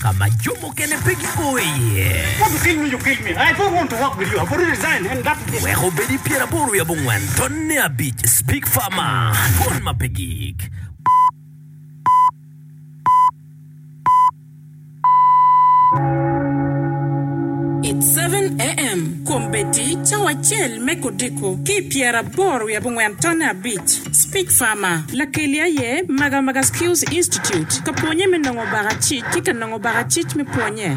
ka ma jo mukene pe gigo iye. Wek obed i pyeraboro wiye abongwen, tonne abic, Speak Farmer, Twon ma pe gik. It's seven AM, Kombeddi cawa acel me kodiko ki i pyeraboro wiye abongwen, tonne abic. Speech Farmer, Lakelli aye Magamaga Skills Institute ka pwonye me nongo baka cic ki ka nongo baka cic me pwonye.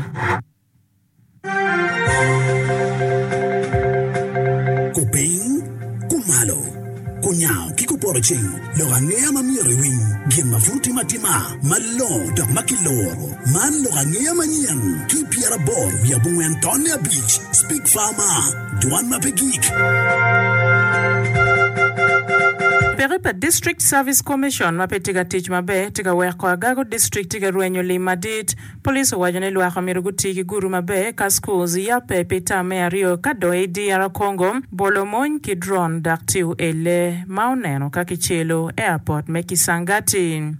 Kupiny, kumalo, kunyango ki kuporo cing lok angeya ma myero iwiny gin ma pud otime atima malongo dok ma kiloro. Man lok angeya manyen ki i pyeraboro wiye abongwen tonne abic. Speech Farmer. Dwan ma pe gik. Peke pa District Service Commission ma pe tye ka tic maber tye ka weko agago district tye ka rwenyo lim madit. Police owaco ni lwak omyero guti ki gudu maber ka schools yabbe pi tam me aryo ka dong i DR Congo bolo mony ki drone dok tiyo elle ma oneno ka kicelo airport me Kisangati.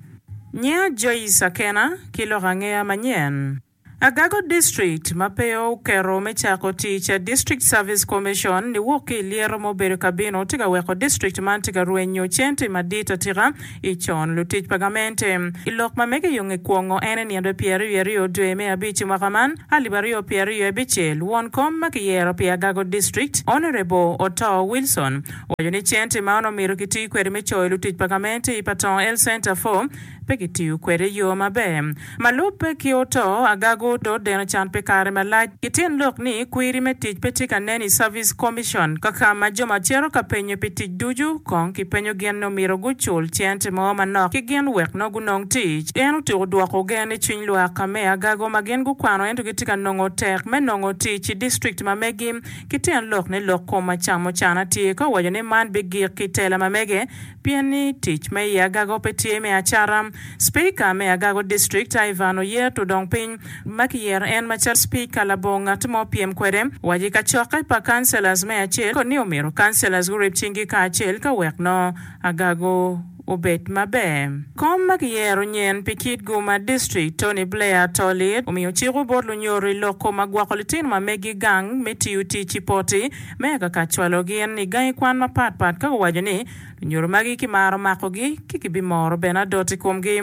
Nyinga Joyce Akena, ki loko angeya manyen. Agago District ma pe oketo me cako tic, District Service Commission, niwok ki i lyeto ma obedo ka bino tye ka weko district man tye ka rwenyo cente madit atika i con lutic pa gamente. I lok ma mege yo nge kwongo en enindo pyeriwiaryo dwe me abic i mwaka man alip aryo pyeraryo abicel, won kom ma kiyero pi Agago District, Honourable Otoo Wilson, owaco ni cente ma onongo omyero kiti kwede me coyo lutic pa gamente i Patong Health Centre for pe kitiyo kwede i yo maber. Ma lubbe ki oto, agaga odo deno can pi kare malac. Kityen lok ni, kwiri me tic pe tye ka nen i Service Commission. Kaka ma jo ma cito ka penyo pi tic ducu, kong kipenyo gin ni omyero gucul cente mo manok ki gin wek nongo gunong tic. En otyeko dwoko gen ni cwiny lwak ka me agaga ma gin gukwano ento gitye ka nongo tek me nongo tic i district ma megi. Kityen lok ni lok kom ma camucana tye ka waco ni man bigik ki tela ma mege, Pien ni tic me i agago pe tye me acata, Speaker me agago district Ivan oyer to dong piny ma kiyero en macalo speaker labongo ngat mo pyem kwede waci kacokke pa councilors me acel koni omito councilors gurib cing gi kacel ka wek nongo agago obed maber. Kom ma kiyero nyen pi kit gu ma district Tony Blair to lit omiyo ciko bot lunyodo i loko ma gwoko litino ma megi gang me tiyo tic i poti me akaka cwalo gin i gangi kwan mapat pat ka guwaco ni lunyodo magi kimaro makogi ki kibimoro bene adot i komgi.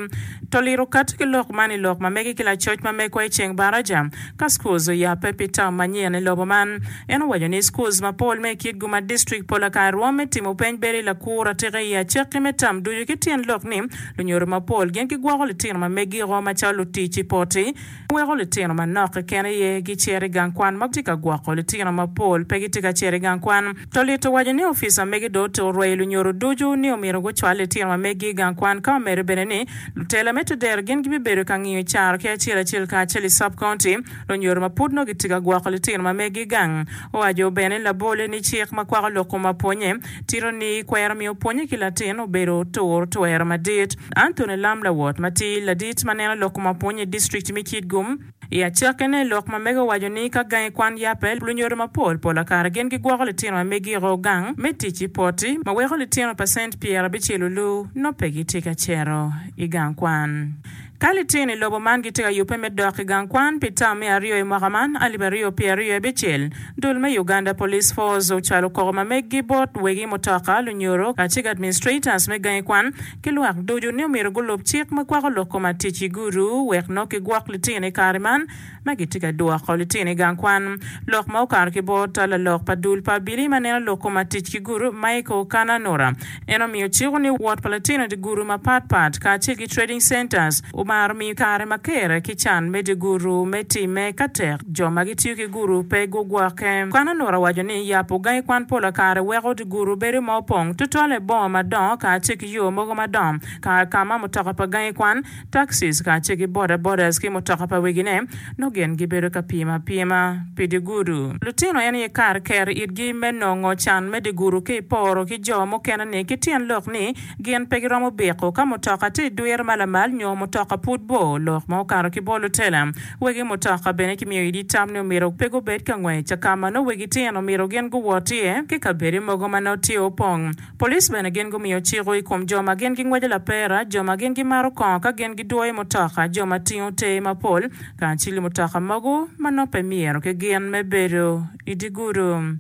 To liro kati ki lok man i lok ma mege ki lacoc ma megwa i ceng baraja ka schools oyabbe pi term manyen i lobo man. En owaco ni schools mapol me i kitgu ma district pol akany rwom me timo peny bedo i lakur atika i acakki me term ducu ki tyen lok ni lunyodo mapol gin gigwoko litino ma meggi o macalo lutic i poti En weko litino manok keken aye gicer i gang kwan ma tye ka gwoko litino mapol pe gitye ka cito i gang kwan. Tolit owaco ni opica mege dong otyeko rweyo lunyodo ducu ni omyero gucwal litino ma meggi i gang kwan ka omedde bene ni lutela me Tedero gin gibibedo ka ngiyo caro ki acel acel kacel i Sub County lunyodo ma pud nongo gitye ka gwoko litino ma meggi i gang. Owaco bene labolle ni cik ma kwako lok kom apwonye Tito ni kwero miyo pwonye ki latin obedo tur twero madit. Anthony Lam lawot ma ti ladit ma neno lok ma pwonye i district me Kitgum. I acake ne lok ma mege owaco ni ka gangi kwan yape, lunyodo ma pol pol akara gin gi gwoko litino ma megi oko gang me tic i poti ma weko litino pacent pyera abicel olu no pe gi tye ka cito i gang kwan. Ka litino i lobo man gitye ka yubbe me dok i gang kwan pi tam me aryo i mwaka man alip aryo pye aryo i abicel, dul me Uganda Police Force ocwalo koko ma meggi bot wegi mutoka, lunyoro, kacig administrators me gangi kwan ki lwak ducu ni omyero gulub cik ma kwako lok koma tic i gudu wek nok gigwok litino i kare man. ma gitye ka dwoko litino i gang kwan, lok ma okato ki bot tal lalok pa dul pa abili ma neno lok koma tic ki gurup, Michael Kananura en omiyo ciko ni wot pa litino dye gurup mapat pat kacel ki trading centers omaro miyo kare ma kere ki can me dye gurup me timme ka tek jo ma gitiyo ki gurup pe gugwokke. Kananura owaco ni yabo gangi kwan pola kare weko dye gurup bedo ma opong tutwale boma madongo kacel ki yo mogo madongo kar ka ma mutoka pa gangi kwan Taxis kacel ki boda bodas ki mutoka pa wegine nongo gin gibedo ka pimo apima pi dye gudu. Lutino en aye kar keto itgi me nongo can me dye gudu ki iporo ki jo mukene-ni ki tyen lok ni gin pe giromo biko ka mutoka tye idwiro ma lamal nyo mutoka pud bor lok ma okato ki bor lutela. Wegi mutoka bene kimiyo idi tam ni omyero pe gubed ka ngwec ka ma nongo wegi tyen omyero gin guwot iye ki kabedo mogo ma nongo tye opong Police bene gin gumiyo ciko i kom jo ma gin gingweco lapera, jo ma gin gimaro kongo ka gin gidwoyo mutoka, jo ma tingo ter mapol, kacili mutoka mogo ma nongo pe myero ki gin me bedo i dye gudo.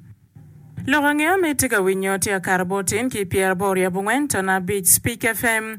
Lok angeya ma itye ka winyo tye akato bot tin ki pyeraboro ryabongwen tona abic Speak FM.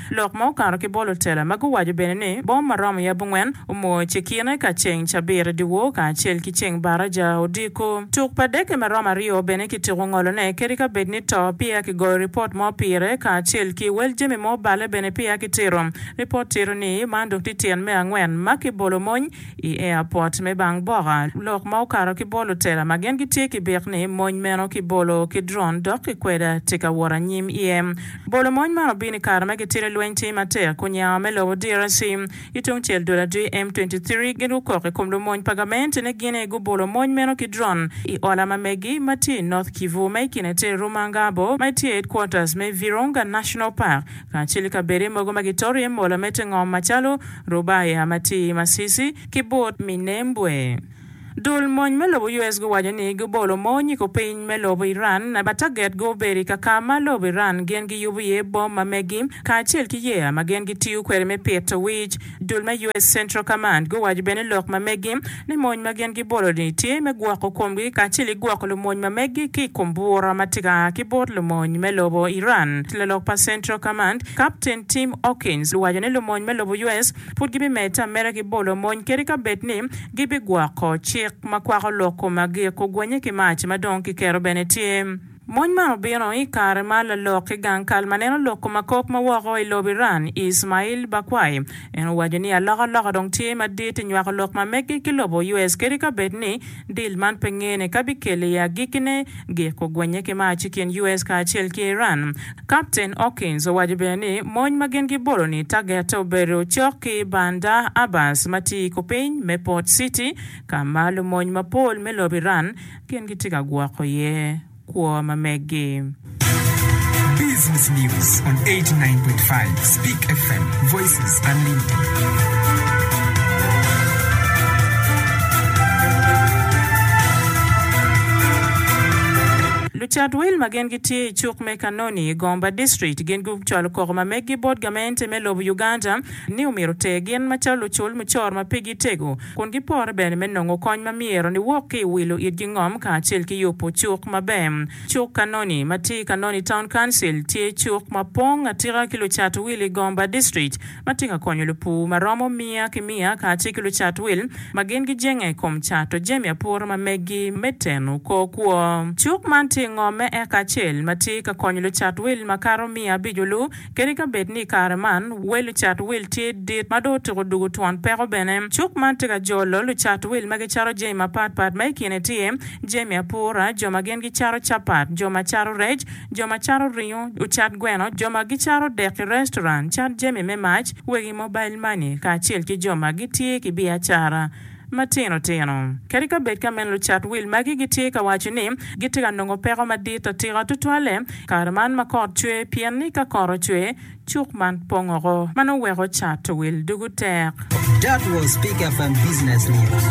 Lok ma okato ki bolo tela ma guwaco bene ni bom ma romo yab ongwen omor cekine ka ceng cabit dyewor kacel ki ceng baraja odiko. Tuk pa deke ma romo aryo bene kitiko ngolone kadi ka bed ni to peya kigoyo ripot mo pire kacel ki wel jami ma obale bene peya kitito ripot tito ni man dok tye tyen me angwen ma kibolo mony I airport me Bang Boka, lok ma okato ki bolo tela ma gin gitye ki bik ni mony meno ki bolo ki drone dok ki kweda tye ka wot anyim iye. Bolo mony man obino i kare ma gitito lweny tye matek kun nyao me lobo DRC ki tung cel dul adwi M23 gin gukok i kom lumony pa gament ni gin aye gubolo mony meno ki drone i ola ma megi ma tye i North Kivu ma i kine tye Rumangabo ma tye i headquarters me Virunga National Park. kacel i kabedde mogo ma gitoro iye mola me te ngom macalo Rubaya, Matir, Masisi, ki but Minembwe. Dul mony me lobo US guwaco ni gubolo mony i kupiny me lobo Iran ma taget gu obedo i kaka ma lobo Iran gin giyubo iye bom ma megi kacel ki yeya ma gin gitiyo kwede me pito wic. Dul me US Central Command guwaco bene lok ma megi ni mony ma gin gibolo-ni tye me gwoko komgi kacel ki gwoko lumony ma megi ki i kom bura ma tye ka a ki bot lumony me lobo Iran. Lalok pa Central Command, Kapten Tim Hawkins, owaco ni lumony me lobo US pud gibimedde ameda ki bolo mony kadi ka bed ni gibigwoko cik ma kwako lok kom ma gik ogwanye ki mac ma dong kiketo bene tye. Mony man obino i kare ma lalok ki gang kal ma neno lok kom akok ma woko i lob Iran, Ismail Baquai, en owaco ni alokaloka dong tye madit i nywako lok ma meggi ki lobo US kadi ka bed ni dil man pe ngene ka bikelle i agikkine. Gik ogwenye ki mac i kin US kacel ki Iran. Kapten Hawkins owaco bene ni mony ma gin gibolo ni tagette obedo cok ki Bandar Abbas ma tye i kupiny me Port City ka ma lumony mapol me lob Iran Gin gitye ka gwoko iye kwo ma megi. Business News on 89.5 Speak FM, Voices Unlimited. Lucat wil ma gin gitye i cuk me Kanoni, Gomba District gin gucwalo koko ma megi bot gamente me lobo Uganda ni omyero ter gin macalo lucul mucoro ma pigi tego. kun gipore bene me nongo kony ma myero niwok ki i wilo itgi ngom kacel ki yubo cuk maber. Cuk Kanoni, ma tye i Kanoni Town Council, tye cuk ma pong atika ki lucat wil i Gomba District ma tye ka konyo lupur ma romo miya ki miya kacel ki lucat wil ma gin gijenge i kom cato jami apura ma meggi me teno kor kwo. Cuk man tye i ngomme eka acel ma tye ka konyo lucat wil makato miya abico-lu. Kadi ka bed ni i kare man wel lucat wil tye dit ma dong otyeko dwogo twon peko bene, cuk man tye ka jolo lucat wil ma gicato jami mapatpat ma i kine tye, jami apura, jo ma gin gicato capat, jo ma cato rec, jo ma cato ringo, ocat gweno, jo ma gicato dek i restoran, cat jami me mac, wegi mobail mani, kacel ki jo ma gitye ki biacara. matino tino. Kadi ka bed ka meno lucat wil magi gitye ka waco ni gitye ka nongo peko madit atika tutwalle kare man ma kot cwe pien ni ka kot ocwe cuk man pong oko ma nongo weko cato wil dugu tek. That was Peak FM Business News.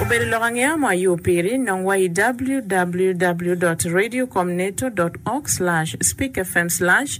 Obedo lok angeya mo ayo piri, nong wa i www dot radio com neto dot org slash speak fm slash.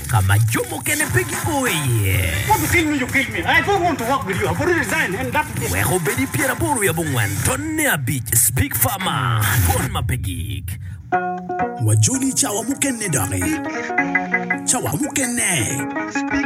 ka ma jo mukene pe gigo iye. Wek obed i pyeraboro wiye abongwen, tonne abic, Big Pharma, Mon ma pe gik. Wajoli cawa mukene doki. Cawa mukene.